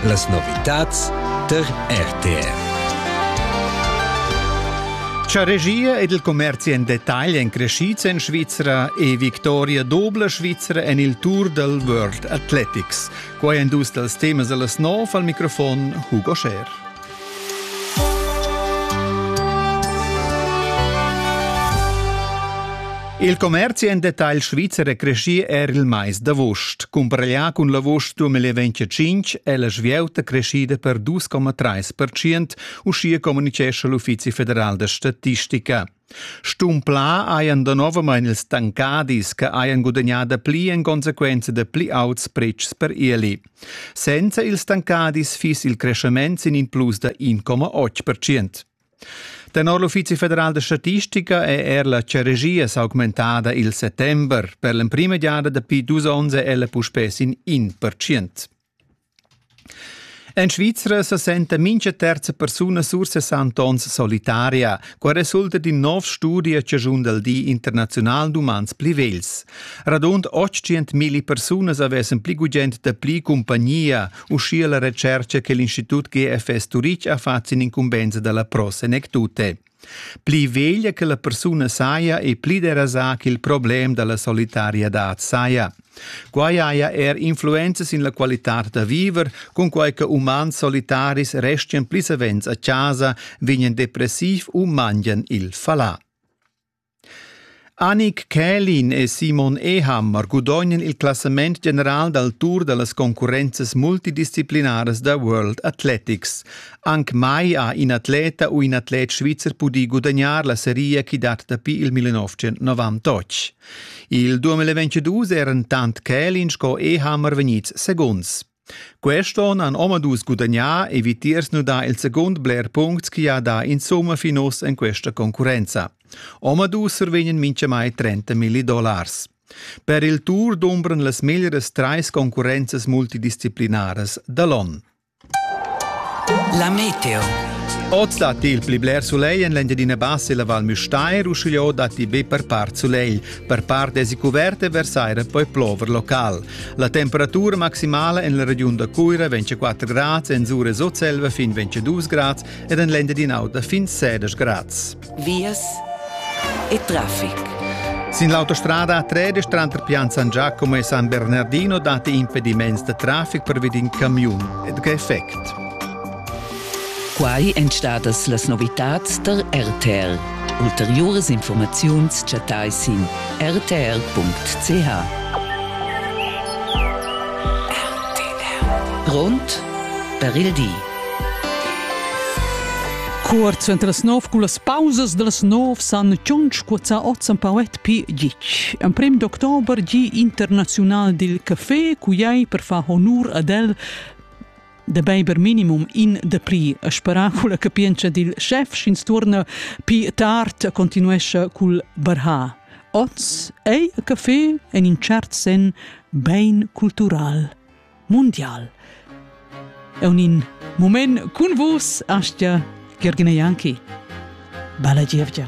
Las novitads tar RTR. Cha regia ed il commerzi en detagl èn crescids en Svizra e victoria dobla Svizra en il Tour dal World Athletics. Quai èn dus dals temas da las nov al microfon Hugo Scher. Il commerzi en detagl svizzer è creschì er il mais d'avust. Cumbraglià cun l'avust 2025 è la svieuta creschida per 2,3%, uschia communicescha l'Uffizi federal da statistica. Stumplà hajan danovamein ils tancadis che hajan gudagnà dapli en consequenza da pli auts pretschs per ieli. Senza ils tancadis fiss il creschement sin in plus da 1,8 percent. Tenor l'Uffizi federal da statistica è er la ceregia s'augmentada il settember. Per l'emprima giada dapi dus onns è ella puspè sin in percent. En Svizra sa senta mincha terza persuna sur 60 ons solitaria. Qua resulta d'in nov studi a chaschun dal Di internaziunal d'umans pli vegls. Radund 800.000 persunas avessan pli gugent da pli cumpagnia, uschia la retschercha che l'Institut GFS Turich ha fatg sin incumbensa dalla Pro Senectute. Pli veglia che la persuna saja e pli derasà ch'il problem da la solitariadad saja. Quai haja er influenzas sin la qualitad da viver, cunquai che umans solitaris restian pli savens a chasa, vegnan depressiv u mangian il falà. Anik Kälin e Simon Eham gudognan il classament general dal tour da las concurrenzas multidisciplinaras da World Athletics. Anc mai ha in atleta u in atlet svizzer pudì gudagnar la seria chi dat dapi il 1998. Il 2022 eran tant Kälin sco Eham vegnids segunds. Quest onn han omadus gudagnà e vitiers nudà il segund bler puncts chi ha dà insumma fin uss en questa concurrenza. Omadus survegnan mintgamai 30 milli dollars. Per il Tour dumbran las meglieras trais concurrenzas multidisciplinaras da l'on. La meteo. Oz datti il pli bler sulegl en l'Engiadina Bassa e la Val Müstair, uschigliò datti be per part sulegl. Per part èsi cuvert e versaira poi plover local. La temperatura maximala en la regiun da Cuira vegn 4 grads, en Sur e Sutselva fin 22 grads ed en l'Engiadin'Auta fin 16 grads. Vias e traffic. Sin l'autostrada A13 tranter Pian San Giacomo e San Bernardino dati impediments da traffic per vid in camiun. E tge effect? Quai èn stadas las novitads tar RTR. Ulteriuras informaziuns chattai sin rtr.ch. Grond per il di. Cuort suenter las nov cu las pausas das nov san tschunch cuoza oz en Pauet pi gitg. En prim d'october gi internazional dil café cu ei per far honur ad el da beiber minimum in de pri a spera culla capientscha dil chef sch'ins tuorna pi tard continuescha cul barha oz ei a café en in cert sen bein cultural mundial e un in moment cun vus astia Gergina Janki Balla gievgia